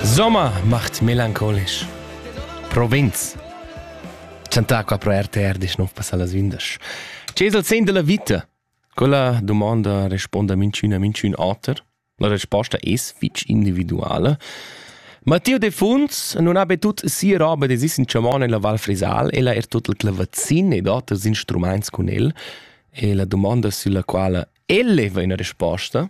Sommer macht melancholisch. Provinz. Chantà qua pro RTR disch nov passà las vindas. Che es il sen della vita? Quella domanda responda minchün a minchün oter. La resposta es fich individuale. Matteo Defunds non ha betut sia roba de sis in chamon nella Val Frisal, ella er tot il clavazin ed oters instruments cun el, e la domanda sulla quala el leva una risposta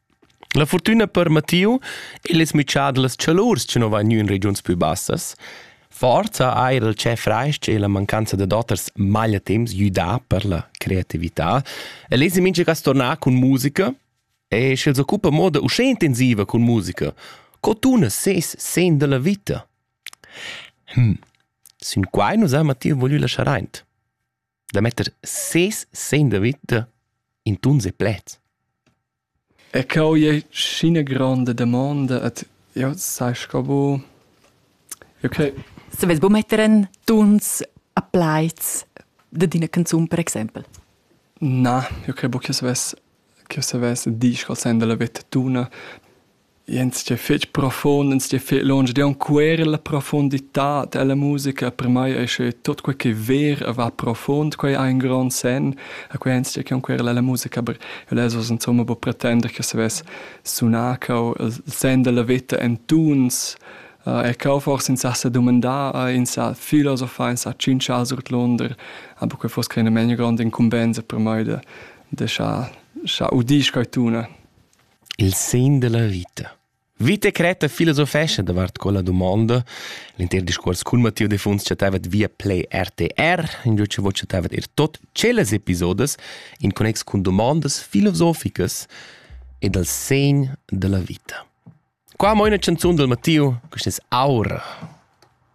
La furtüna per Mattiu il es mütschà da las chalurs chi nu va gnü in regiuns pü bassas. Forza eir il tschè frais-ch e la mancanza dad oters magliatemps gnü dà per la creatività. El es mincha cas tornà cun musica e sch'el s'occupa in moda uschè intensiva cun musica, co tuna ses sen da la vita? Hm, sün quai nu s'ha Mattiu voglü laschar aint. da metter ses segn da vita in tuns e pleds. E cau è scina gronda domanda et io sai sco bu okay. Se vez bu metter en tuns a plaids de dina canzun per exempel. Na, io credo che se vez che se vez di scol senda la vetta tuna Ins sto fetg profund, ins sto fetg lunsch ed aunc quella profunditad ella musica per mei ei sche tut quei che ver e va profund, quei ha in grond senn e quei ins sto che aunc quella ella musica, aber lez oz insomma buca pretender che savess sunar cau il senn dalla veta en tuns. E cau forse ins ha sa dumandar, ins sa filosofar, ins ha tschintschar surdlunder, aber quei fuss creina memia gronda incumbensa per mei de de schar schar udir quei tuna. Il segn della vita. Vita cretta filosofescha davart quella dumonda. L'inter discuors cun Matteo Defuns chattavet via Play RTR, ingio cha vo chattavet er tot tschellas episodes in connex cun domondas filosoficas e dal segn della vita. Qua mo ina canzun del Matteo, questa es Aura.